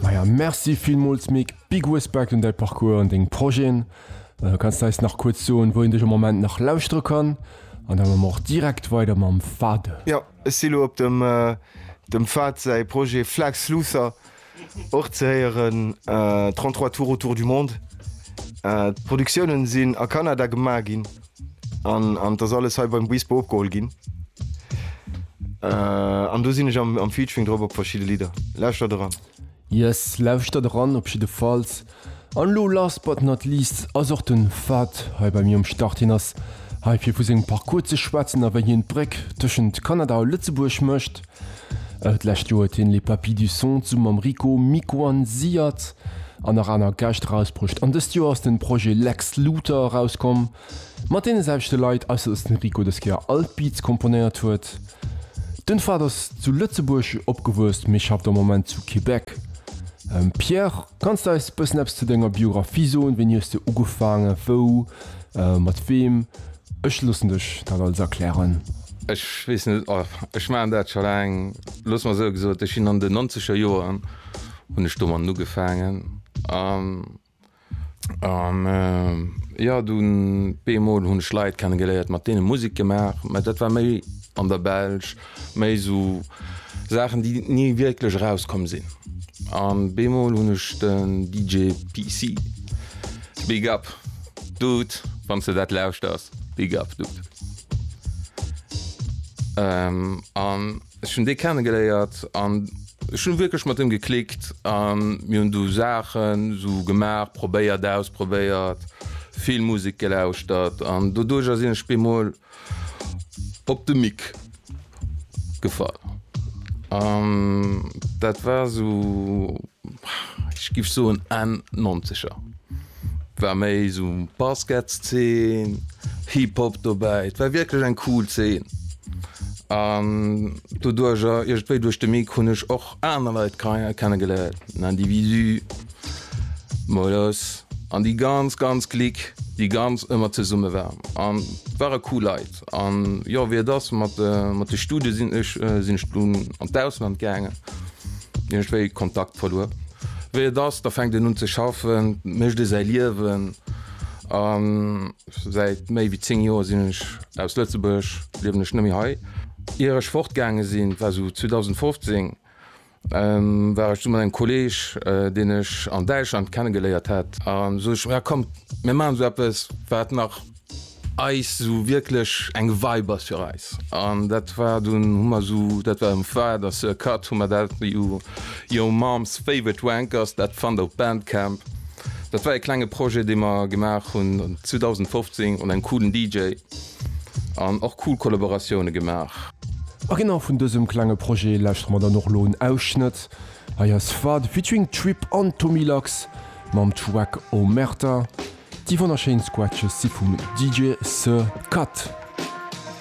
Maja Merci villmools Mick, big Respekt un däi Parcours an deng Projeten. Äh, kanns du eis nach kuerz soen, wou een dech am Moment nach lauschtere kann? An da mme mer och direkt weider mam Fahd. Jo, ech si lo op dem dem Fahd säi Projet Flax Luther och ze héieren, 33 tours autour du monde. D'Produktiounen sinn a Kanada gemaach ginn. An an et ass alles hei beim Buispe opgeholl ginn. An do sinn ech am am Featuring drop op verschidde Lidder. Lauschtert eran! Yes, lauschtert eran op jiddefalls. An elo last but not least ass och den Fahd hei bei mir um Start. Hien ass hei fir vu sengem Parcours ze schwätzen a wéi hien d'Bréck tëschent Kanada a Lëtzebuerg mécht. D'lescht Joer huet hien Les Papis du Son zesumme mam Rico Mikoanziert an nach aner Gäscht erausbruecht an dëst Joer ass den Projet Lex Luthor erauskomm mat deene selwechte Leit, ausser dass den Rico dës Kéier all d'Beats komponéiert huet. Den Fahd ass zu Lëtzebuerg opgewuess mee schafft am Moment zu Québec. Pierre. Kanns de eis bëssen eppes zu denger Biographie soen? Wéini hues de ugefaangen? Wou? Mat weem? Ech loossen dech dat alles erklären. Ech weess net, ech maachen dat scho laang. Looss mer esou gesot, ech sinn an den nonzeger Joren hunn ech domatten ugefaangen an jo, dunn bemol hunn ech Leit kenne geléiert, mat deene Musek gemaach, mä dat war méi an der Belsch. Méi sou Saachen déi ni wierklech erauskomm sinn. An beemol hunn ech den DJ PC. Big up Dude, wann s de dat lauschters, Big up Dude. An ech hunn dee kennegeléiert an ech hunn wierklech mat him geklickt a mir hunn du Saachen sou gemaach, probéiert, ausprobéiert, vill Musek gelauschtert an doduercher sinn ech beemol Op de Mick gefall an dat war esou, ech giff soen Enn Nonzeger, war méi esou Basketszen, Hip-Hop dobäi, et war wierklech eng cool Zeen an doduerjer iergendwéi duerch de Mick hunn ech och aner Leit kennengeléiert, den Individu, Mol los an déi ganz ganz Klick déi ganz ëmmer zesumme war an ware cool Leit an jo wéi et ass mat mat de Studie sinn ech sinn ech dunn an d'Ausland gaangen hunn ech wéi Kontakt verluer wéi et ass da fänkt een un ze schaffen mécht ee säi Liewen an säit méi wéi 10 Joer sinn ech aus Lëtzebuerg liewen ech net méi hei ier ech fortgaange sinn war sou 2015. war ech du mat engem Kolleg, deen ech an Däitschland kennegeléiert hat, an sot ech, jo kommt mir maachen esou eppes, wat nach eis esou wierklech eng Vibe ass fir eis. An dat war dunn, hu mer esou, dat war um Far der Sir Cut, hu mer dat u Your Mom's Favorite Wankers, dat fannt der op Bandcamp, dat war e klenge Projet, dee mer gemaach hunn 2015 un engem coolen DJ. An och cool Kollaboratioune gemaach. A genau vun dësem klenge Projet lauschtere mer dann och elo en Ausschnëtt. Hei ass Fade featuring Trip an Tommy Lax mam Track Omerta. Déi wonnerschéin Scratches si vum DJ Sir Cut.